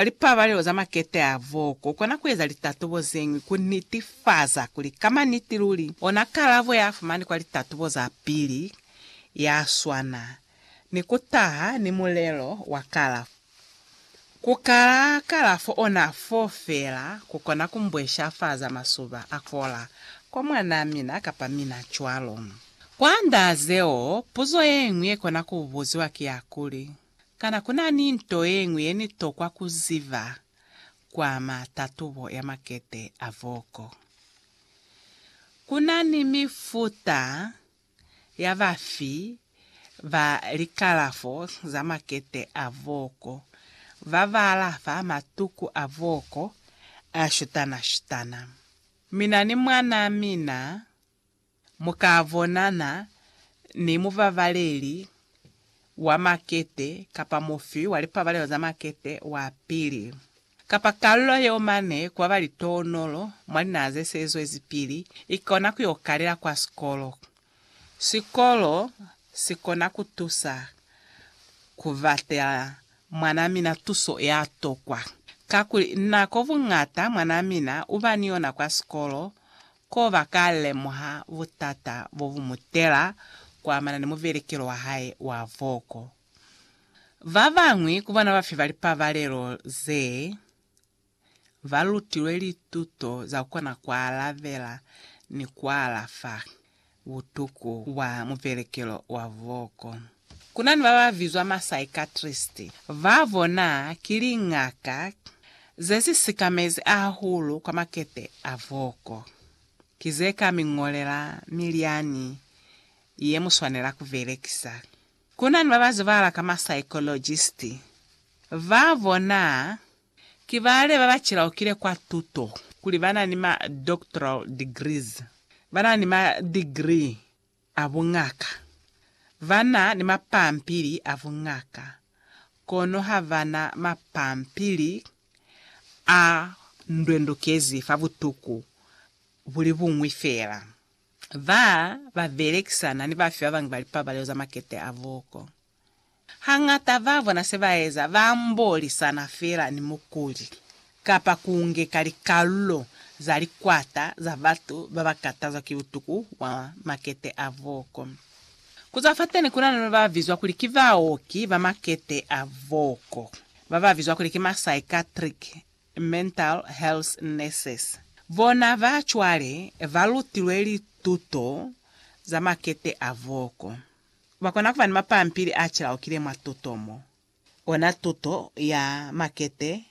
Ka lipabalelo za makete a voko, u kona ku eza litatubo ze ñwi ku nitifaza kuli ka maniti luli ona kalabo ya fumani kwa litatubo za pili ya swana ni ku taha ni mulelo wa kalafo. Ku kala kalafo ona fo fela ku kona ku mbweshafaza masuba a kola kwa mwanaa mina kapa mina cwalo. Kwand'a zeo, puzo ye ñwi ye kona ku buziwa ki ya kuli, Kana ku na ni nto ye ñwi ye ni tokwa ku ziba kwa ama tatubo ya makete a voko? Ku na ni mifuta ya bafi ba likalafo za makete a voko ba ba alafa matuku a voko a shutana-shutana. Mina ni mwanaa mina Mu ka bonana ni mubabaleli wa makete kapa mufi wa lipabalelo za makete wa pili, kapa kalulo yeo mane kwa ba litoonolo mwa linaha ze se zwezi pili i kona ku yo kalela kwa sikolo. Sikolo si kona ku tusa ku batela mwanaa mina tuso ya tokwa, kakuli nako buñata mwanaa mina u ba ni yona kwa sikolo Koba ka lemuha butata bo bu mu tela kuamana ni mubelekelo wa hae wa voko. Ba bañwi ku bona ba fi ba lipabalelo ze ba lutilwe lituto za ku kona ku alabela ni ku alafa. butuku bwa mubelekelo wa voko. Ku na ni ba ba bizwa masaikatristi. Ba bona ki liñaka ze si sikamezi hahulu kwa makete a voko. Ki ze ka mi ñolela milyani ye mu swanela ku belekisa. Ku na ni ba ba zibahala ka masaikologisti. Ba bona Ki bale ba ba cilaukile kwa tuto, kuli ba na ni ma doctoral degrees, ba na ni ma degree a buñaka, ba na ni mapampili a buñaka, kono ha ba na mapampili a ndwendukezi fa butuku bu li buñwi fela. Ba ba belekisana ni bafi ba bañwi ba lipabalelo za makete a buko. Hañata ba bona se ba eza ba ambolisana fela ni mukuli kapa ku ngeka likalulo za likwata za batu ba ba katazwa ki butuku bwa makete a boko. Ku zwa fateni ku na ni ba ba bizwa kuli ki baoki ba makete a boko, ba ba bizwa kuli ki ma psychiatric mental health nurses. Bona ba cwale ba lutilwe lituto za makete a boko. Bakona kuba ni mapampili a cilaukile mwa tuto mo, kona tuto ya makete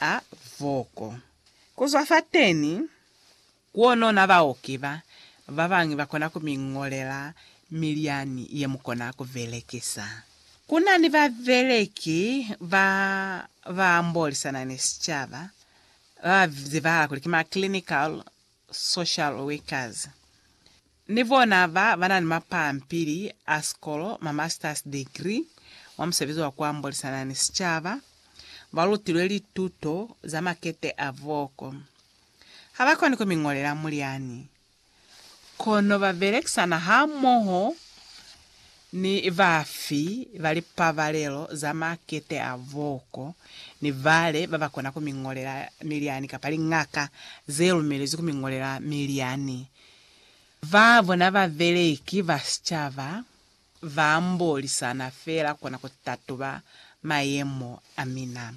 a voko. Kuzwa fateni, kuonona baoki ba babañwi bakona kumiñolela milyani yemukona kubelekisa. Kunani babeleki ba baambolisana ni sicaba, babazibahala kuli ki ma clinical social workers, ni bona ba ba na ni mapampili a sikolo, ma master's degree, mwa musebezi wa ku ambolisana ni sicaba, ba lutilwe lituto za makete a voko. Ha ba koni ku mi ngolela mulyani, kono ba belekisana hamoho Ni bafi ba lipabalelo za makete a booko ni bale ba ba kona ku mi ñolela milyani kapa liñaka ze lumelezwi ku mi ñolela milyani? Ba bona babeleki ba sicaba ba mbolisana feela kona ku tatuba mayemo a mina.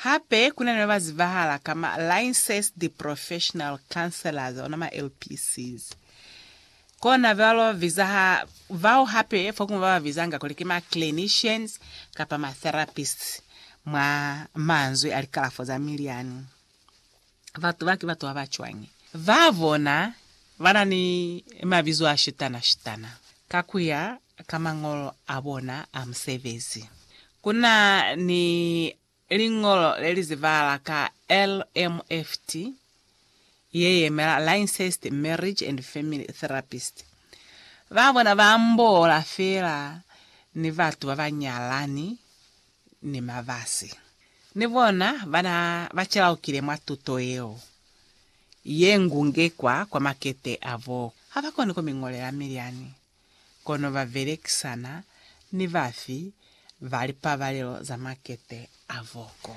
Hape ku na ni ba ba zibahala ka ma Licensed Professional Counselors, ona ma LPCs. Kona ba ba biza ha, bao hape fokuñwi ba ba bizanga kuli ki ma clinicians kapa ma therapists mwa manzwi a likalafo za miliani. Batu ba ki batu ba ba cwañi? Ba bona ba na ni mabizo a shutana-shutana ka ku ya ka mañolo a bona a musebezi. Ku na ni liñolo le li zibahala ka LMFT, ye yemela Lincest Marriage and Family Therapist. Ba bona ba ambola feela ni batu ba ba nyalani ni mabasi. Ni bona bana ba calaukile mwa tuto yeo ye ngungekwa kwa makete a bo. Ha ba koni ku mi ñolela milyani, kono ba belekisana ni bafi ba lipabalelo za makete a bo. Ko